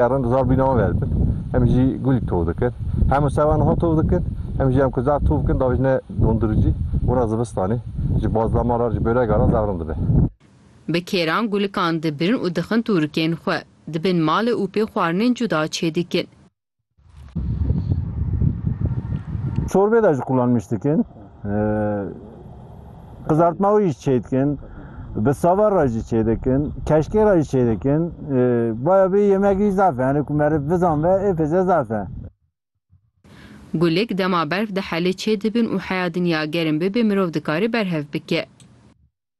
Erin zar bîna wan ver dikin. Em jî gulî tov dikin. Hemû sewa niha tov dikin. Em jî em ku zar tov bikin davêjine donduricî. Wina zivistanê ji bazlama re ji börega re zar rind dibe. Bi kêran gulikan dibirin û dixin tûrikên xwe. Dibin malê û pê xwarinên cuda çêdikin. Çorbê de ji qulan miş dikin. Qızartma wî jî çê dikin. Bi sava re jî çê dikin. Keşkê re jî çê dikin. Baya bê yemekî zaf e. Hani ku meriv bizan ve ê pêze zaf e. Gulik dema berf dihelê çê dibin û heya dinya germ bibe mirov dikare berhev bike.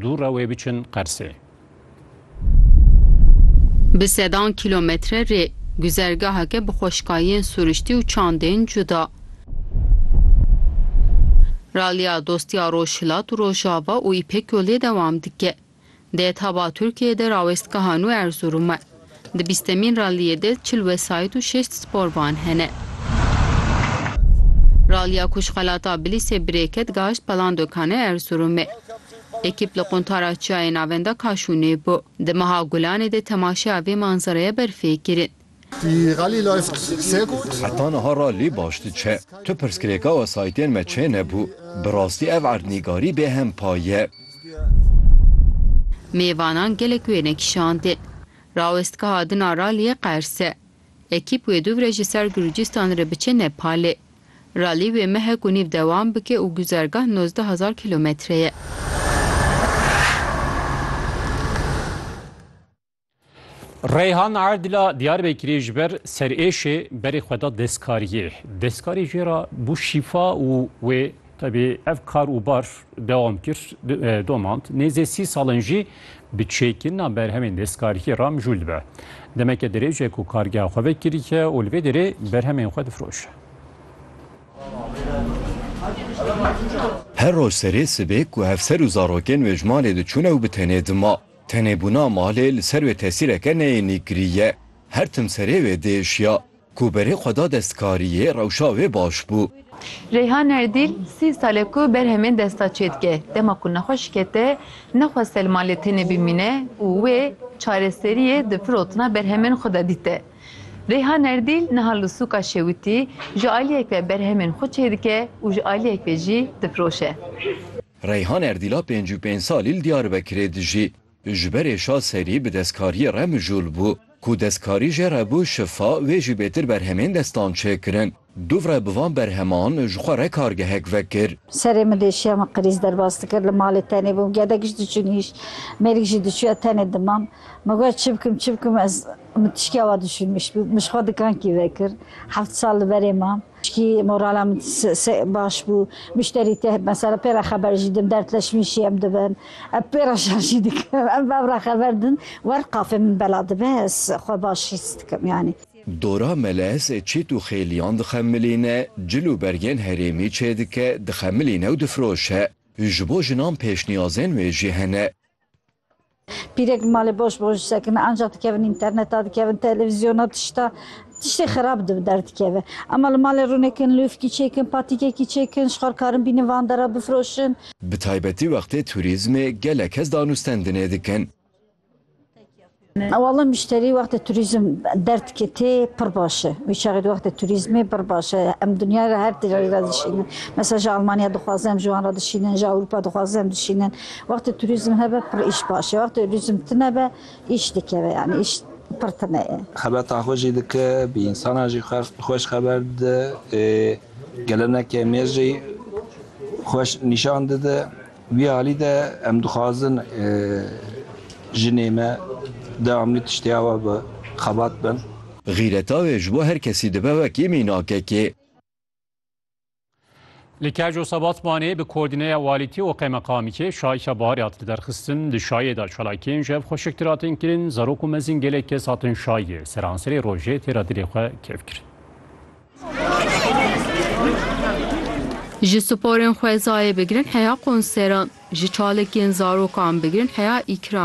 Dû re wê biçin Qersê. Bi sedan kîlometre rê, guzergaheke bi xweşkayên suriştî û çandên cuda. Raliya Dostiya Rojhilat û Rojava û Îpek Yolê dewam dike. Dê Taba Tirkiyeyê de rawestgeha nû Erzurum'e. Di bîstemîn raliyê de çil wesayît û şêst sporvan hene. Raliya ku ji xelata Bilîsê birê ket gahişt Pelandokane Erzurumê. Ekîp li Quntara Çiyayê Navenda Kaşûnê bû. Di meha Gulanê de temaşeya vê manzeraya ber fê kirin. Heta niha ralî baş diçe. Tu pirsgirêka wesayîtên me çê nebû. Bi rastî ev erdnîgarî bêhempa ye. Mêvanan gelek wêne kişandin. Rawest ka hadin a raliyê Qerse. Ekîp wê dûvre ji ser Gurcistan re biçe Nepalê. Ralî wê mehek û nîv dewam bike û guzergah nozdeh hezar kîlometre ye. Reyhan Erdila Diyarbekirê ji ber serêşê berê xwe da destkariyê. Destkarê jê re bû şîfa û wê tevê ev kar û bar dewam kir e, domand. Nêzê sî salin jî bi çêkirina berhemên destkariyê re mijûl dibe. Demeke dirêj e ku kargeha xwe vekiriye û li vê derê berhemên xwe difroşe. Her roj serê sibê ku hevser û zarokên wê ji malê diçûne û bi tenê dima. Tenê bûna malê li ser wê tesîreke neyênî kiriye. Her tim serê wê diêşiya. Ku berê xwe da destkariyê, rewşa wê baş bû. Reyhan Erdîl, sî sal e ku berhemên desta çê dike. Dema ku nexwe şikete, nexweste li malê tenê bimîne û wê çareseriyê di firotina berhemên xwe de dîte. Reyhan Erdîl niha li sûka Şewitî ji aliyek ve berhemên xwe çêdike û ji aliyek ve jî difiroşe. Reyhan Erdîla pênc û pênc salî li Diyarbekirê dijî. Ji berê şa serî bi destkariyê re mijûl bû. Ku destkarî jê re bû şifa, wê jî bêtir berhemên destan çêkirin. Dûvre bi van berheman ji xwe re kargehek vekir. Serê min deşiya min qirîz derbas dikir. Li malê tenê bûm. Gedek jî diçûn hîş. Mêrik jî diçûya tenê dimam. Min got çi bikim, çi bikim ez min tiştiya wa dişûnmiş bû. Min ji xwe dikankî vekir. Heft sal li berê mam. Çikî morala min baş bû. Muşterî tê mesela pê re xeber jî din, dertleşmîn jî em dibin. Em pê re şer jî dikin. Em bev re xeber din. Wer qafê min bela dibe ez xwe baş hîs dikim yanî. Dora melez çît û xêliyan dixemilîne, cil û bergên herêmî çêdike, dixemilîne û difiroşe. Ji bo jinan pêşniyazên wê jî hene. Pîrek bi malê boş boş sekine anca dikevin înterneta dikevin televîzyona tişta tiştê xerab di bi der dikeve. Ema li malê rûnekin lûfkî çêkin patîkekî çêkin şixar karin bînin van dera bifroşin. Bi taybetî wextê turîzmê gelek kes danûstendinê dikin. Walla mûşterî wextê turîzm der dike tê pir baş e. Wî çaxê di wextê turîzmê pir baş e. Em dinyayê ra her têreyê ra dişînin. Mesela ji Almanya dixwaze em ji wan ra dişînin ji Ewropa dixwaze em dişînin. Wextê turîzm hebe pir îş baş e. Wextê urîzm tune be îş dikeve yanî îş pir tune ye. Xebata xwe jî dike, bi însanan jî xweş xeber dide. Geleneke mêr jî xweş nîşan dide. Wî alî de em dixwazin jinê me dewamlî tiştê awe bi xebat bin. Xîreta wê ji bo her kesî dibe wekî mînakek e. Li Keco Sebatmanê bi koordîneya walîtî û qeymeqamîkê şayîşa baharê hat li derxistin. Di şayê de çalakiyên ji hev xweşiktir hatin kirin, zarok û mezin gelek kes hatin şayê seranserê rojê têra dilê xwe kêf kirin. Ji sporên xwezayê bigirin heya konseran, ji çalakiyên zarokan bigirin heya îkram.